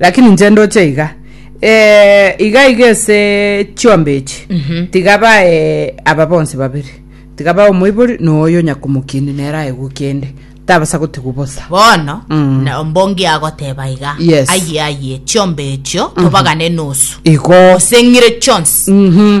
Lakini inche ndoche iga eh, iga iga ase chiombe echi tiga bae aba bonsi babere tiga bae omoibori na oyo nyakomokieni nere aegwe kende tabasa gotigwa bosa bono Mm. na- mbongi agoteba iga Yes. aye aye chiombe echio tobagane nusu igo oseng'ire chionsi Mhm.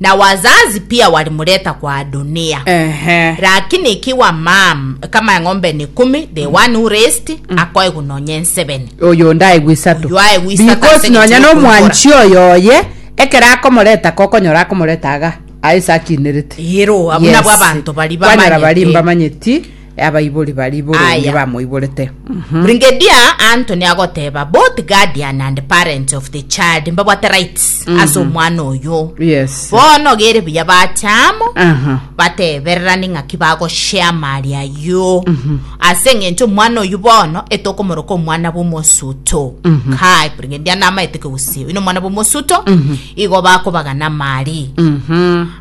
Na wazazi pia walimuleta kwa Adonia. Ehe. Lakini ikiwa mam kama eng'ombe ni kumi the one who raised akoegu nonya ensebeni oyo ndaegwa isato Oyo aegwa isato because ase nonya eng'encho nomwanchi y'okombora. oyo oye ekero akomoreta kokonyora akomoreta aga aye sakinerete Ero, abuna bwa abanto bari kwanyora bari bamanyeti. mbamanyeti Abaibori baria boronge Aya. bamoiborete. Mhm. Brigadier Anthony agoteba both guardian and parents of the child mbabwate rights ase omwana oyo Yes. bono gere buya bachamo Aha. batebererani ng'aki bagoshea mali ayio ase eng'encho omwana oyo bono etokomoroka omwana bw'omosuto kai brigadier namaete kegusii oino omwana bw'omosuto igo bakobagana mali Mhm.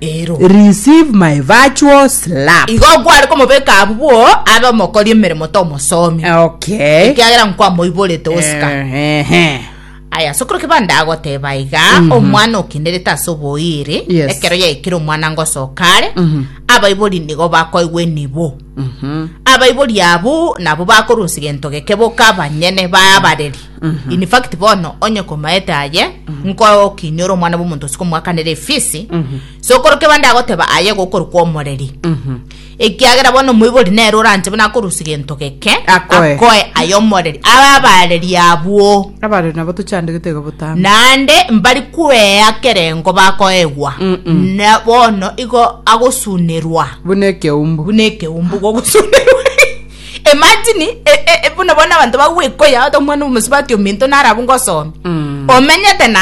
Ero. Receive my virtual slap. Igo kware komobeka abwo abe omokori emeremo tomosomi. Okay. Ekiagera nkwamoiborete osika. Ehe. Aya sokoro kibanda agoteba iga mm -hmm. omwana okinderete ase oboiri yes. ekero yaikire omwana ngosoka are mm -hmm. abaibori nigo bakoigwa enibo abaibori abwo nabo bakorunsa gento geke boka abanyene babareri in fact bono onye komaete aye nkokinyora omwana bw'omonto ase komwakanera efisi sokoroke bande agoteba aye gokorokwa omoreri ekiagera bono omoibori nere oranche buna akorunsa gento geke Akoe. akoe aye omoreri ababareri abwo Abare nabo tochandegete iga botambe. Naende mbari kwea kerengo bakoegwa, na bono igo agosunerwa Buna ekeumbu. buna ekeumbu gogosunerwa. Imagine, e- e- e- buna bono abanto bagwekoya ota omwana omosubati ominto naro abwo ngosomia. Mm. Omenyete na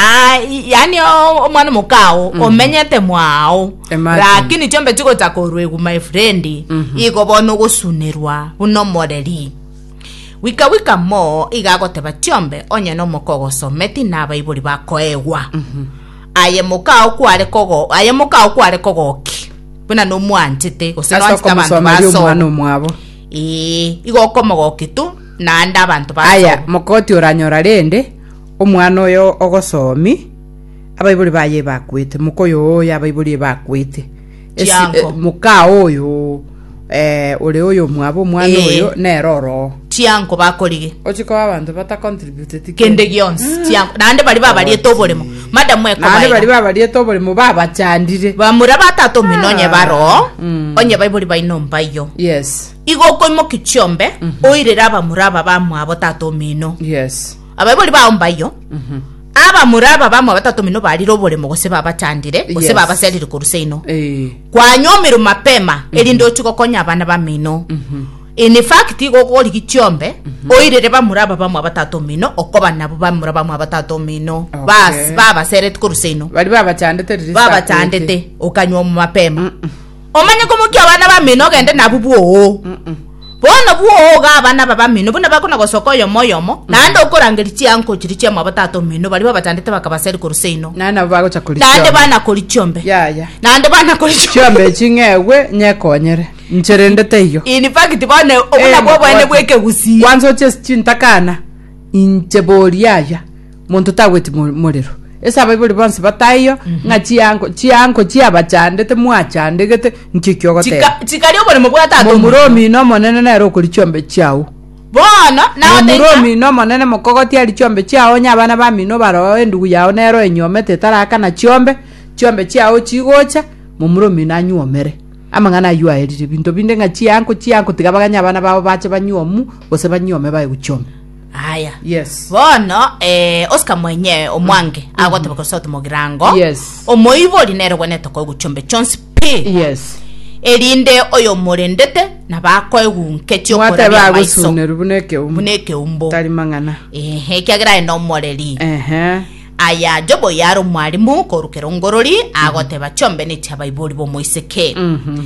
yani o- omwana omokao omenyete mwao Imagine. lakini chiombe chigocha koruegwa my friend igo bono ogosunerwa buna omoreri Gwika gwika mo iga agoteba tiombe, onye nomoka ogosometi na abaibori bakoegwa. Aye moka ao kware kogo aye moka ao kware kogoki. Buna nomwanchete gose Ase nwanchete abanto okomosomeria omwana basoma. omwabo. Ee, igo okomogoki tu naende abanto basoma. Aya, mokoti oranyora rende omwana oyo ogosomi, abaibori baye ebakwete, moka oyo oyo abaibori ebakwete. Esi- chiango. eh, mokaa oyo eh, ore oyo omwabo omwana Eh. oyo nere oroo chiango bakorige ochi koba abanto batacontributed kende gionsi chiango naende bari babariete oboremo madamu naende bari ekobaira babariete oboremo babachandire bamura batata omino onye baroo Mm. onye baibori baino mbayo yes igo okoimoki chiombe oirere abamura aba bamwabo tata omino yes Abaibori bao mbayio, abamura aba bamo batato mino barire oboremo gose babachandire gose Yes. babaserire korwa seino. Eh. Kwanywa omiru mapema erinde ochie gokonya abana bamino. In fact igo ogorigi chiombe oirere bamura aba bamo batato mino okoba nabo bamura bamo batato mino Okay. bas babaserete korwa seino Bari babachandete riri saa kwete. babachandete okanywa omo mapema Omanye komokia abana bamino ogende nabwo bwoo. Bono bwoo ga abana aba bamino buna bakona gosoka oyomo oyomo, naende okorangeria chianko chiria chia mwa batata omino baria babachandete bakabaseri korwa seino. Naye nabo bagocha koria Naende chiombe. bana koria chiombe. Yaya. Naende bana koria chiombe. Chiombe echi ng'egwe nyekonyere. Inche rende teiyo. In fact bono obuna Eh, bwa obwene mabwate. bw'ekegusii. Kwanza oche ase chintakana, inche boria yaya. monto tagweti mo- morero ase abaibori bonsi bataiyo ng'a chiango chiango chiabachandete mwachandegete nkiki ogoteba Chika- chikari oboremo bwa tata omino. momuromi na omonene nere okori chiombe chiao bono nao taiga omuromi na omonene mokogoti ari chiombe chiao onye abana bamino baroo endugu yao nero enyuomete etarakana chiombe chiombe chiao chigocha momuromi nanyuomere amang'ana aywo aerire binto binde ng'a chiango chiango tiga baganye abana bao bache banyuomu gose banyuome baye gochiombe aya Yes. bono eh, oscar mwenye omwange agoteba koresa ote mogirango Yes. omoibori nere gwenete koigwa chombe chonsi pi yes erinde oyo omorendete nabakoegunketie mwateba amaiso agosunerwa buna ekeumbu buna ekeumbu tari mang'ana ehe kiagera aye nomoreri ehe aya jobo yare omwarimu korukera ongorori agoteba chombe nechiabaibori bomoiseke Mhm.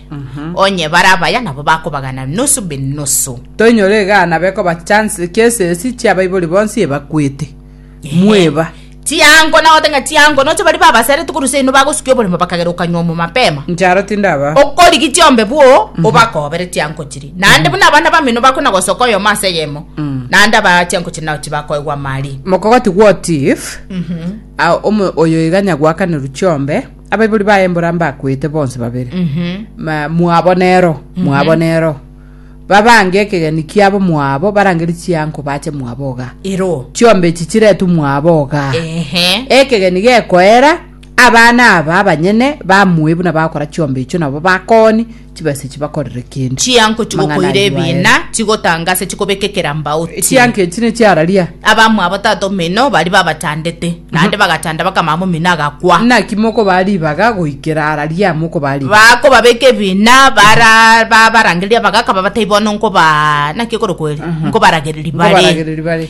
Onye bare abaya nabo bakobagana nusu be nusu. Toinyora egana bekoba chancellor cases chia abaibori bonsi ebakwete. Mweba. Chiango nagote ng'a chiango noche bari babasere tokorusia ino bagosukia oboremo bakagera okanywa omo mapema. Ncharo tindaba. Okorigi chiombe bwo obakobere chiango chiri. Naende buna abana bamino bakona gosoka oyomo ase eyemo. Naende aba chiango chiri nao chibakoegwa mari. Mokogati what if omo oyo iga nyagwakaneru chiombe. Abaibori baye mbora mbakwete bonsi babere Ma- mwabo nero mwabo nero babange ekegeni kiabo mwabo barangeri chianko bache mwabo iga ero chiombe echi chiretu mwabo iga ehe ekegeni gekoera abana aba abanyene bamue buna bakora chiombe echio nabo bakoni chibesa chibakorere kende. Chianko chigokoira ebina, chigotanga ase chikobekekera mbauti. Chianko echi ne chiararia. Abamwabo tata omino baria babachandete, naende bagachanda bakamama omino agakwa. Naki mokobaa ribaga goikera araria mokobaa ribaga? Bakobabeka ebina, bara babarangereria abagaka babatebi bono nkobaa naki ekorokwo ere? Nkobaragereria bare. Nkobaragereria bare.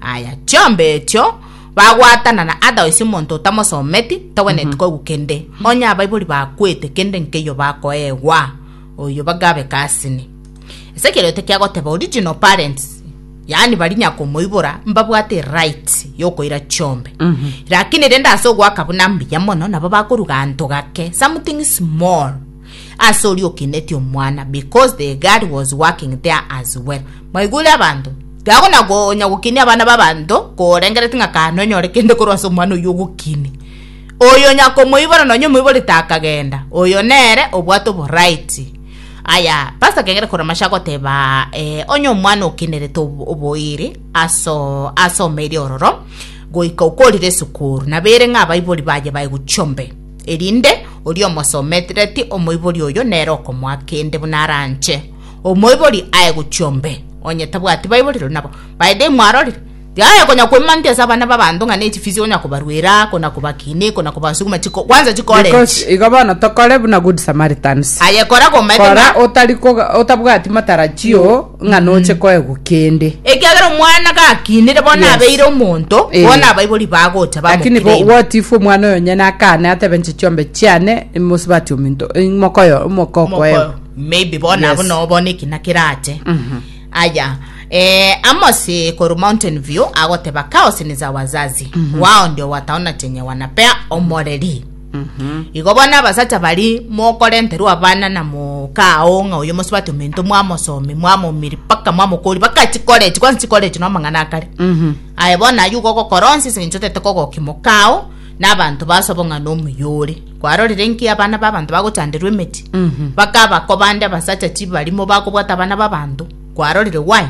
Aya, chiomba echio bagwatana na otherwise omonto otamosometi togwenereti mm-hmm. koigwa kende onye abaibori bakwete kende nkeiyo bakoegwa oyo bagabe kasini ase ekerio tekiagoteba original parents yaani bari nyakomoibora mbabwate right yokoira chiombe mm-hmm. lakini rende ase ogwaka buna mbuya mono nabo bakoruga anto gake something small ase oria okenetie omwana because the guard was working there as well mwaigure abanto gago na gonya gokinia abana babanto korengereti ng'a kane onyore kende korwa ase omwana oyo ogokini oyo nyakomoibora nonye omoiborete akagenda oyo nere obwate oboraiti aya pasta kegere koramasha goteba eh, onye omwana okenerete obo- oboiri aso asomeire ororo goika okorire esukuru nabere ng'a abaibori baye baye gochombe erinde oria omosomereti omoibori oyo nere okomoa kende buna aranche omoibori aye gochia ombe, onye tabwati baiborerwe nabo baede imwarorire tihaya konya koimantia ase abana b'abanto ng'a ne chifisi onya kobaruera kona kobakina kona kobasuguma chiko kwanza chikore Because inche. igo bono tokore buna good samaritans Aye kora komaete kora ng'a otari koga- otabwati matarajio ng'a noche koegwa kende. Ekiagera omwana gakinire, bono Yes. abeire omonto, Eh. bono abaibori bagocha Lakini bo- bamokire ime. what if omwana oyo nyene akane atebe nche chiombe chiane mosibati ominto mokoyo omoko okoewa Moko- maybe bono Yes. abo nabo bono ekina kerache Mhm. aya eh, amosi koru mountain view agoteba kaos ni za wazazi wao ndio wataona chenye wanapea omoreri Igo bono abasacha baria mokorenterwa abana na mooka ao ng'a oyo mosubati omento mwamosomia mwamoumiri mpaka mwamokori mpaka chikorechi kwansi chikorechi na amang'ana akare aye bono aywo igo ogokora onsi ase eng'encho otete kogokia moka ao na abanto base obong'ana omoyore kwarorire nki abana ba abanto bagochanderwa emeti bakabakobande abasacha chibarimo bakobwata abana ba abanto kwarorire why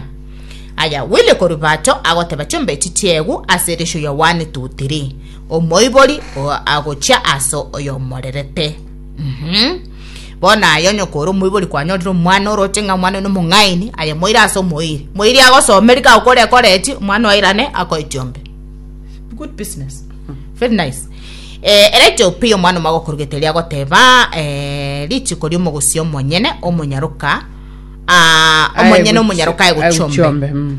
aya Willy korwa ibacho agoteba chimbe echi chiegwe ase erisio yawanete otiri omoibori oo agochia ase oyomorerete. Mm-hmm. Bono aye onye kore omoibori kwanyorire omwana oroche ng'a omwana oyo nomong'aini, aye moire ase omoiri. Moiri agosomerika agokora ekoreti, omwana oirane akoetiombe. Good business. Hmm. Very nice. Eh, ere etiope ya omwana omagokorogete ria agoteba eh, richiko ria omogosi omonyene omonyaroka ah, omonyene omonyaroka aye gochombe mm.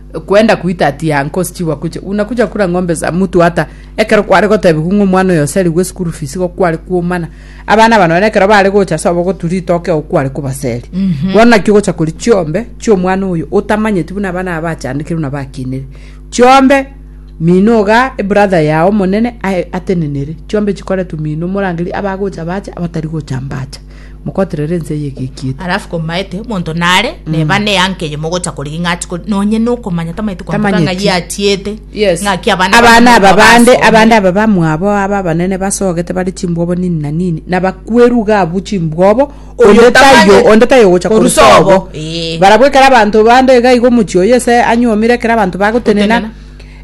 kwenda kuita ati yankosi chigwa kucha una kucha kura ng'ombe za mutu hata ekero kware gotebigwa ng'o mwana oyo oserigwe school fees go kware kuomana abana bano bene ekero bare gocha so abogoturi itoke o kware kubaseri mhm. bono nakio gocha kori chiombe chio mwana oyo otamanyeti buna abana abachandikire buna bakinire chiombe mino ga e brother yao monene atenenere chiombe chikore tu mino morangeri abagocha bacha abatari gocha mbacha Mokoterere ense eye egekiete. Alafu komaete omonto nare neba ne yanka eye mogocha korigi ng'achi kori nonye nokomanya tamaeti kwantoka ng'a Tamanyeti. giatiete Yes. ng'aki abana abana aba bande basome. abande aba bamwabo aba abanene basogete bare chimbwobo nini na nini na bakweru iga abwo chimbwobo Oyo onde taiyo tamanyeti. onde taiyo ogocha Korusa korusa obo. obo Ee. barabwo ekero abanto bande iga iga omochie oyo ase anyuomire ekero abanto bagotenena Gotenena.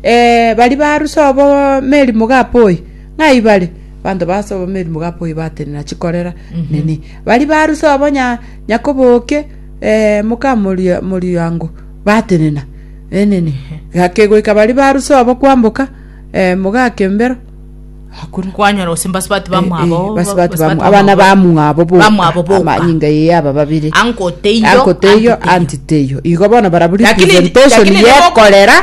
eh, bari barusa obo merimo gapoi ng'ai bare Abanto base obameri mogapoye batenena chikorera nini. Bari baruse obo nya nyakoboke eh, moka moria moriango batenena. Enene. Gakegoika bari baruse obo kwamboka eh, mogakembero. Hakuna. kwanyora gose mbasubati Eh, eh, bamwabo basubati bamu- abana bamwabo boka. bamwabo boka. Amanyinga yeye aba babiri. anko teiyo Anko teiyo, anti teiyo. Igo bono baraburi Lakini- presentation lakini ye nabo- korera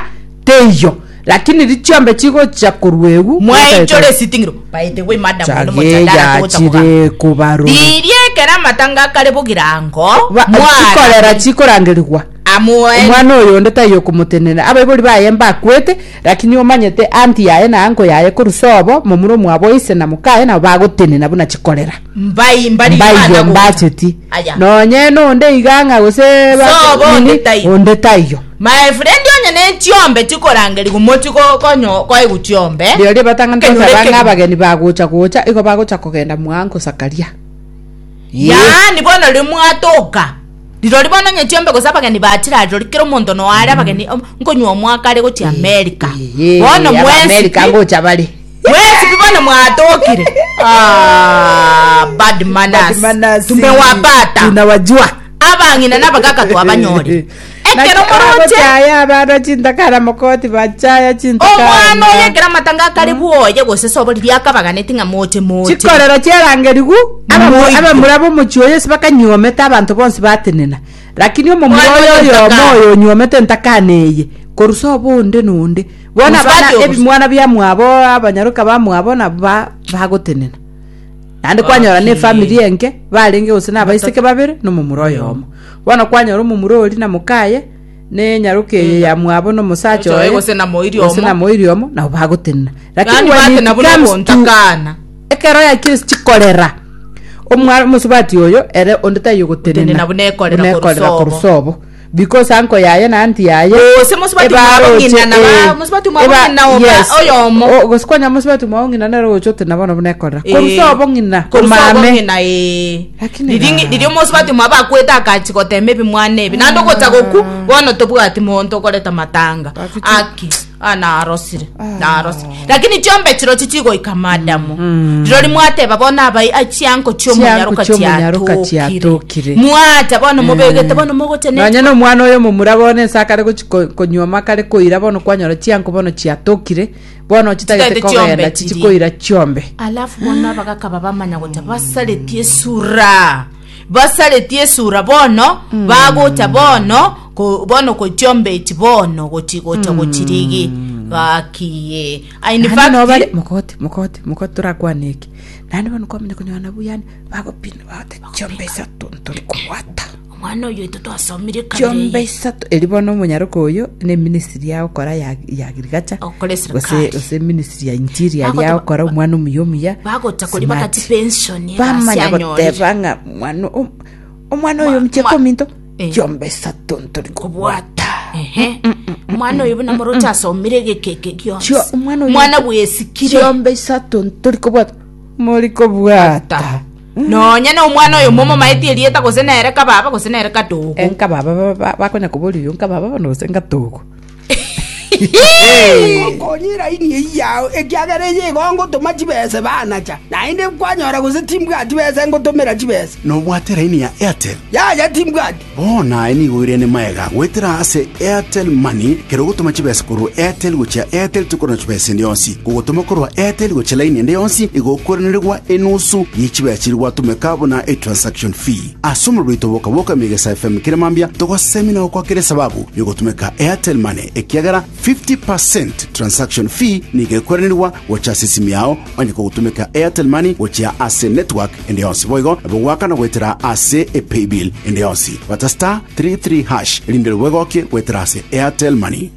Teiyo, lakini riria chiombe chigochia korwa egwu, Mwainchore esiting'iro. By the way, madam, Chage nomochadara togocha kogamba. yachire kobarora. Riria ekero amatanga akare bogirango, Ba- mwara chikorera chikorangerigwa amoe omwana oyonde taiyo okomotenena abaibori baye mbakwete lakini omanyete anti yaye na anko yaye korwa sobo momura omwabo ise na mokaye nabo bagotenena buna chikorera Mbai mbarigia Mbaiyo abana gocha. mbacheti. Aya. Nonyene onde iga ng'a gose ba- Sobo nini, onde taiyo. onde taiyo. My friend onye ne chiombe chikorangeria gomoti go- konyo koegu chiombe. Rirorio batang'ani Ekenyoro toteba ekegima. ng'a abageni bagocha gocha, igo bagocha kogenda mwago gosakaria. Ee. yaani bono riria mwatoka rirori bono onye chiombe gose abageni bachira rirori kera omonto noare abageni om- nkonywa omwaka are gochia amerika Ee, bono Abaamerika mwesipi ngocha bare. Mwesibie bono mwatokire. Ah, bad manners. Bad manners. Tumewapata. Tunawajua. Abang'ina na abakaka twabanyore. Ekero moroche. Mochaya abana chintakara mokoti bachaya chintakara. Omwana oyo ekero amatanga akare bwoye gose sobori riakabaganeti ng'a moche moche. Chikorero chiarangerigu abamura bomochi oyo ase bakanyuomete abanto bonsi batenena. Lakini omomura oyo oyomo oyo onyuomete entakana eye korusa obonde nonde. Bono abana ebimwana biamwabo abanyaroka bamwabo nabo bagotenena naende kwanyora ne family enke barenge gose na abaiseke babere na omomura oyomo bono kwanyora omomura ori na mokaye ne nyaroka eye ya mwabo na omosacha oye gose na moiri gose na moiri omo nabo bagotenena lakini when it comes to ekero ya kire chikorera omwana omosubati oyo ere onde taiyo gotenena buna ekorera korusobo Because anko yaye na anti yaye. Gose mosubati mwabo ebaroche, ng'ina na ba- eh, mosubati mwabo eba- ng'ina oba yes. oyomo. O- gose kwanya mosubati mwao ng'ina nere ogocha ote na bono buna ekorera Eh, korusa obo ng'ina korusa obo komame ng'ina, eh. Lakini Riri ng'i- ga- riria omosubati mwabo akwete akachi gotema ebimwana ebi naende ogocha goku bono tobwati monto okoreta matanga Bafiti- aki Ah, narosire narosire lakini chiombe chiro chichigoika madamu riro rimwateba bono abai achianko chiomonyaroka Chianko chi'omonyaroka chiatokire chiatokire. mwata bono mobegete bono mogocha ne- nonya na omwana oyo omomura bono ense akare gochi- ko- konywa makare koira bono kwanyora chianko bono chiatokire bono ochitagete Chitagete chiombe kogenda chichi chiri. koira chiombe alafu bono abagaka babamanya gocha basaretie esura Basaretie esura bono, bagocha bono, ko, bono kochiomba echi bono, gochi gocha gochirigi. Gakiye. Ah, In Naende fact, nabo bare mokote mokote mokote torakwane eke naende bono kwamanya konyora nabwo yani bagopina bagoteba chiombe isato ntorikobwata omwana oyo Twasomire kabere Chiomba eye. isato eri bono omonyaroka oyo ne ministry ya okora ya, ya agriculture Okora gose esirikari. gose ministry ya interior Bagoteba- ya okora omwana omuya omuya Bagota kori smart. bagati pension ye bamanya gasi anyorire. goteba ng'a mwana om- omwana oyo Mwa- mchie mwa- kominto Eh. chiomba isato ntori kobwata Ehe. Mwana oyo buna morote asomire egekeke gionsi. Chio- omwana oyo- Mwana bwesikire. chiomba isato ntori kobwata mori kobwata Nonya nomwana oyomo omomaetie erieta gose nere kababa gose nere kadogo. Eh, nkababa ba- ba- bakonya kobori oyo nkababa bono gose nkatogo Konyira ini eyio yao, ekiagera eye igo ngotoma chibese banacha, naende kwanyora gose timbwati besa ngotomera chibesa. Nobwate laini ya Airtel? Yaya timbwati. Bono aye nigo oirene maega goetera ase Airtel Money, kera ogotoma chibesa korwa Airtel gochia Airtel tikorora chibesa ende yonsi. Kogotoma korwa Airtel gochia laini ende yonsi igokwerenerigwa enusu ye chibesa chiria gwatomeka buna etransaction fee. Ase omorero oito bwoka bwoka Emegesa FM kera mambia togosemi na gokwa kera esababu yogotomeka Airtel Money ekiagera 50 per cent transaction fee nigo ekwerenerigwa gocha ase esimi yao onye kogotomeka Airtel Money gochia ase network ende yonsi boigo nabo goakana goetera ase epaybill ende yonsi. Bata star three three hash erinde nabo egokie goetera ase Airtel Money.